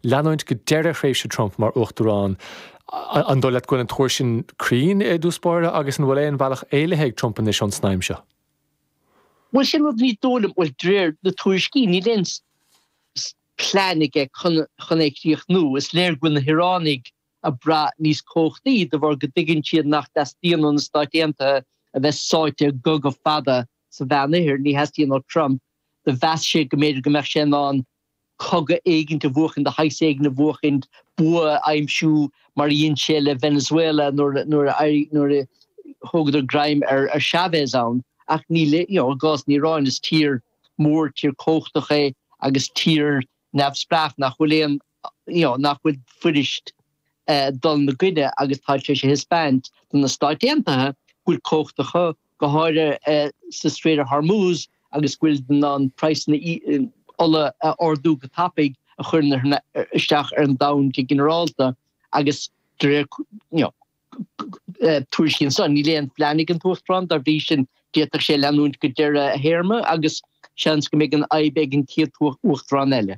leanúint go deireadh thréimhse Trump mar Uachtarán. An dóigh leat go bhfuil an tuar sin cruinn i dtús báire agus an bhfuil aon bhealach éalaithe ag Trump anois ón snaidhm seo? Bhuel, sin rud, ní dóigh liom. Bhuel, de réir na tuairiscí, níl aon phlean aige chun é a chríochnú. Is léir go bhfuil na hIaránaigh ag brath níos cumhachtaí de bharr go dtuigeann siad nach dteastaíonn ó na Stáit Aontaithe a bheith sáite i gcogadh fada sa Mheánoirthear. Ní theastaíonn ó Trump, do mheas sé go mb'fhéidir go mbeadh sé in ann cogadh éigin a bhuachaint, de shaghas éigin a bhuachaint, bua a aimsiú mar a dhein sé le Venezuela nuair a thógadar greim ar Chavez ann. Ach níl, you know, i gcás na hIaráine, is tír mhór, tír chumhachtach é agus tír neamhspleách nach bhfuil aon, you know, nach bhfuil fuiriste dul 'na gcoinne agus tá sé théis a thaispeáint do na Stáit Aontaithe go bhfuil cumhacht acu. go háirithe sa Strait of Hormuz, agus go bhfuil siad in ann praghsanna ola a ardú go tapaidh, a chuireann isteach ar an domhan go ginearálta, agus de réir na tuairiscí ansan, níl aon phlean ag an tUachtarán, dá bhrí sin, d'fhéadfadh sé leanúint go deireadh a théarma, agus seans go mbeidh an fhadhb ag an chéad Uachtarán eile.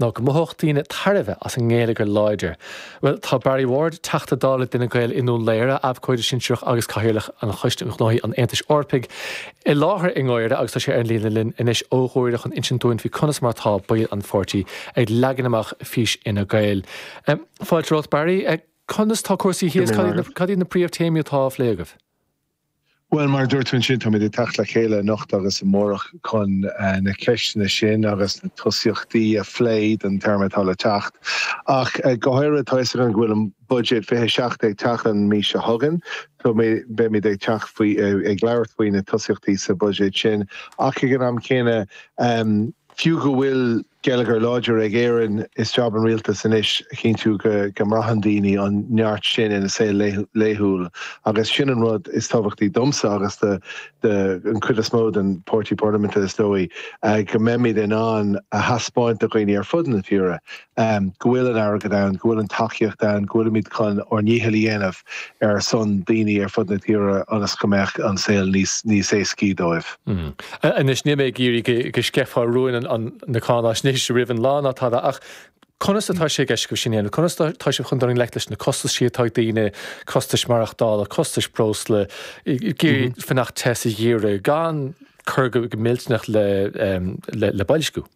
ná go mothódh daoine tairbhe as an ngeilleagar láidir. Bhuel, tá Barry Ward, Teachta Dála d'Fhine Gael i nDún Laoghaire, Abhcóide Sinsearach agus Cathaoirleach an Choiste um Ghnóthaí an Aontais Eorpaigh, i láthair i nGuaire agus tá sé ar an líne linn anois ó Ghuaire chun insint dúinn faoi conas mar atá baill an pháirtí ag leagan amach fís Fhine Gael. Fáilte romhat, Barry. Conas tá cúrsaí thíos? Cad iad na príomhtéamaí atá á phlé agaibh? Bhuel, mar a dúirt tú ansin, táimid ag teacht le chéile anocht agus amárach chun na ceisteanna sin agus na tosaíochtaí a phlé don téarma atá le teacht. Ach go háirithe, tá 'fhios againn go bhfuil an buiséad 27 ag teacht an mhí seo chugainn. So, beimid ag teacht faoi, ag labhairt faoi na tosaíochtaí sa bhuiséad sin. Ach ag an am céanna, fiú go bhfuil, geilleagar láidir ag Éirinn, is jab an Rialtais anois a chinntiú go mbraitheann daoine an neart sin ina saol laethúil agus sin an rud is tábhachtaí domsa agus don chuid is mó den Pháirtí Parlaiminte, is dóigh, go mbeimid in ann a thaispeáint do dhaoine ar fud na tíre go bhfuil an airgead ann, go bhfuil an tacaíocht ann, go bhfuilimid chun ár ndícheall a dhéanamh. ar son daoine ar fud na tíre ionas go mbeadh an saol níos éascaí dóibh. Anois níl mé ag iarraidh go sceithfeá rúin na cáináisnéise roimh an lá ná tada ach conas atá sé i gceist agaibh sin a dhéanamh? Conas atá sibh chun dul i ngleic leis na costaisí atá ag daoine, costais mhaireachtála, costais breosla, ag iarraidh fanacht te sa gheimhreadh gan cur go millteanach le boilsciú?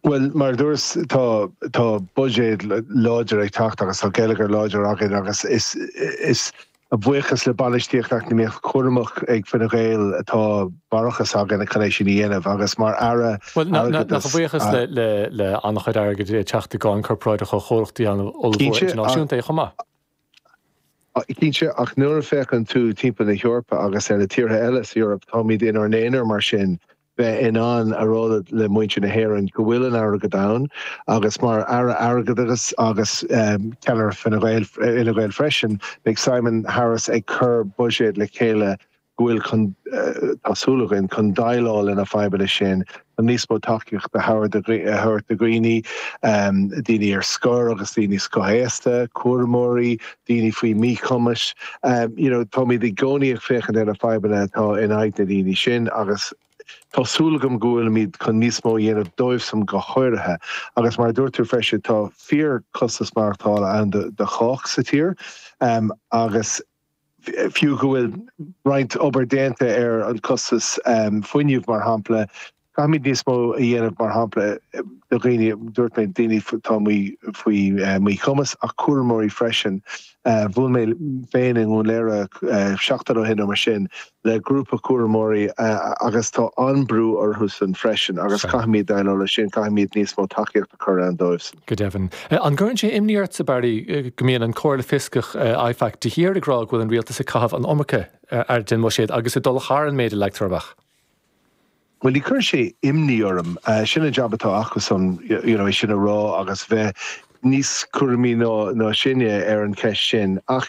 Bhuel, mar a dúras, tá buiséad láidir ag teacht agus tá geilleagar láidir againn agus is a bhuíochas le bainistíocht eacnamaíoch chúramach ag Fine Gael atá barrachas againn chun é sin a dhéanamh agus mar Aire Airgeadais. Bhuel, nach a bhuíochas le an-chuid airgid ag teacht i gcáin corparáideach ó chomhlachtaí an-ollmhóra idirnáisiúnta chomh maith. Cinnte, ach nuair a féachann tú timpeall na hEorpa agus ar na tíortha eile sa Eoraip, táimid inár n-aonar mar sin. bheith in ann a rá le muintir na hÉireann go bhfuil an airgead ann agus mar Aire Airgeadais agus ceannaire Fine Gael, Fhine Gael freisin, beidh Simon Harris ag cur buiséad le chéile go bhfuil chun, tá súil againn, chun déileáil lena fadhbanna sin, chun níos mó tacaíochta a thabhair thabhairt do dhaoine, daoine ar scor agus daoine scothaosta, cúramóirí, daoine faoi mhíchumas. You know táimid i gcónaí ag féachaint ar na fadhbanna atá in aghaidh na ndaoine sin agus tá súil agam go bhfuilimid chun níos mó a dhéanamh dóibhsan go háirithe. Agus mar a dúirt tú freisin tá fíor costas maireachtála ann do chách sa tír agus fiú go bhfuil roinnt obair déanta ar an costas fuinnimh mar shampla, Caithfimid níos mó a dhéanamh, mar shampla, do dhaoine, dúirt mé daoine atá faoi mhíchumas, ach cúramóirí freisin. Bhuail mé féin i nDún Léire seachtain ó shin nó mar sin le grúpa cúramóirí agus tá an-brú orthusan freisin agus caithfimid déileáil leis sin, caithfimid níos mó tacaíochta a chur ann dóibhsan. Go deimhin. An gcuireann sé imní ort, a Barry, go mbíonn an Comhairle Fioscach, IFAC, de shíor ag rá go bhfuil an rialtas ag caitheamh an iomarca airgid den bhuiséad agus ag dul thar an méid a leagtar amach? Bhuel, ní chuireann sé imní orm. Sin an jab atá acusan, you know, é sin a rá agus bheith níos cúramaí ná sin ar an cheist sin. Ach